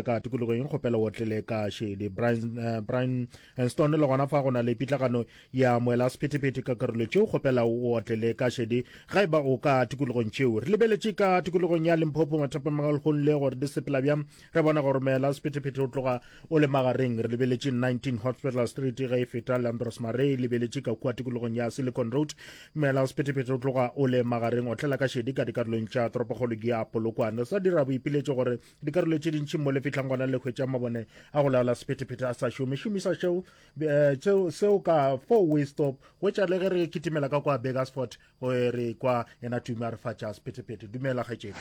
ka tikologo eng kgopela o tlele ka šedi brian eh, brian eh, stone le gona fa go na le pitlagano ya moela sephetephete ka karolo tšeo kgopela o tlele ka šedi ga e ba o ka tikologong tšeo re lebeletše ka tikologong ya limphopo mathapamagalgong le gore di sepela bjang re bona gore moela sephetephete o tloga o le magareng re lebeletše 19 hospital street ge e feta landros mare e lebeletše ka kua tikologong ya silicon road moela sephetephete o tloga o le magareng o tlela ka šedi ka dikarolong tša toropokgolo ke ya polokwane sa dira boipiletše gore dikarolo tše dintši mo lefetlhang gona le hwetša mabone a go laola sephetephete a sa šome šomisa šeo eh, seo ka four way stop hwetša le ge re kitimela ka kwa begasfort eh, re kwa ena tume a re fatša sephetephete dumela kgetšedi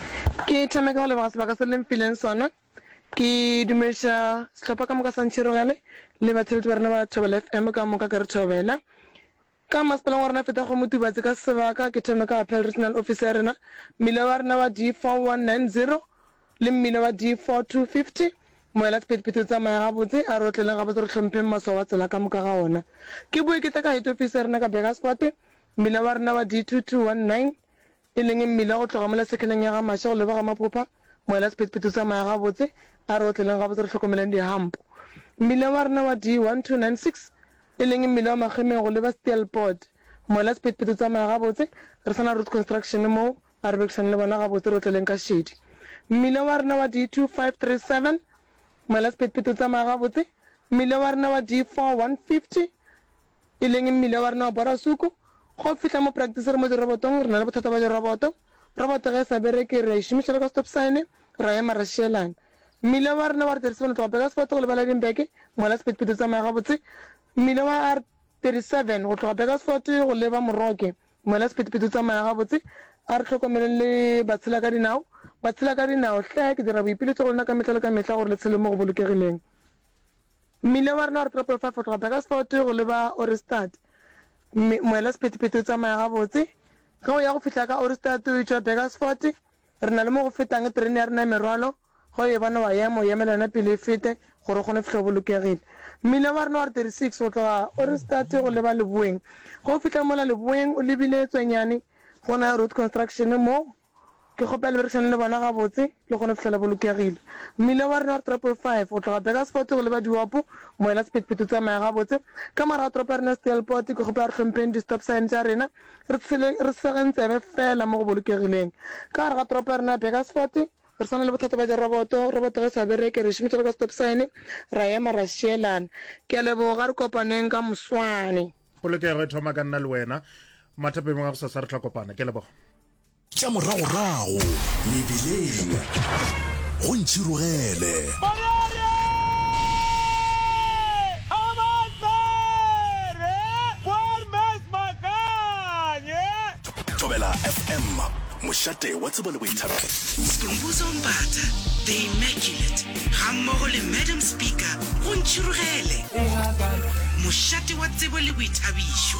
ke thame ka go leboga sebaka se leng fileng sona ke dumediša sehlopha ka moka sa ntšhirogele le batsheletsi ba rena ba thobela fm ka moka ke re thobela Ka masepaleng wa rena feta go Motubatse ka sebaka ke thome ka Apel Regional Office ya rena, mmila wa rena wa D4190 le mmila wa D4250. Moela sephethephethe o tsamaya gabotse, a re otleleng gabotse re hlompheng maswao a tsela ka moka ga ona. Ke boe ke tle ka Head Office ya rena ka Burgerspoort, mmila wa rena wa D2219. e leng mmila o tloga mola sekheneng ya ga Mashe go leba ga Maphopa, moela sephethephethe o tsamaya gabotse, a re otleleng gabotse re hlokomeleng dihampo. Mmila wa rena wa D1296, e leng mmila wa Makgemeng go leba Steelpoort, moela sephethephethe o tsamaya gabotse, re sa na Root Construction moo, a re bekišane le bona gabotse re otleleng ka šedi. Mmila wa rena wa D2537, moela sephethephethe o tsamaya gabotse, mmila wa rena wa D4150, e leng mmila wa rena wa borasuku, ga o fihla mo practice re mo dirobotong re na le bothata ba diroboto, roboto ge e sa bereke re a e šomiša le ka stop sign ra ema ra šielana. Mmila wa rena wa R37 o tloga Burgersfort go lebala Edinburgh, mola sephethephethe o tsamaya gabotse, mmila wa R37 go tloga Burgersfort go leba Moroke, mola sephethephethe o tsamaya gabotse, a re hlokomeleng le batshelakadinao, batshelakadinao hle ke dira boipiletšo go lena ka mehla le ka mehla gore le tshele mo go bolokegileng. Mmila wa rena wa Retropool 5 go tloga Burgersfort go leba Ohrigstad, moela sephethephethe o tsamaya gabotse. Ge o ya go fihla ka Ohrigstad o etšwa Burgersfort, re na le mo go fetang terene ya rena ya merwalo, ge o e bona wa ema, o emela yona pele e fete gore o kgone go fihla o bolokegile. Mmila wa rena wa R36 go tloga Ohrigstad go leba leboeng. Ge o fihla mola leboeng o lebile tswenyane go na le Road Construction mo, Ke kgopela berekisane le bona gabotse le kgone go fihlela bolokegile. Mmila wa rena wa toropo e 5 go tloga Bakersfort go leba Diwapu, moela sephethephethe o tsamaya gabotse. Ka morago toropo ya rena ya Steelpoort, ke kgopela re hlompheng di stop sign tša rena, re tshele, re segen tsebe fela mo go bolokegileng. Ka gare ga toropo ya rena ya Bakersfort, re swana le bothata bja diroboto, roboto ge e sa bereke re e šomiša le ka stop sign, ra ema ra šielana. Ke a leboga, re kopaneng ka moswane. Polokego e thoma ka nna le wena. Mathapeng a gosasa re tla kopana. Ke a leboga. tša moragorago mebeleng go ntšhirogele. mošate wa tsebo le boithabelo stumbuzo mpata the immaculate gammogo le madam speaker go ntšhirogele mošate wa tsebo le boithabišo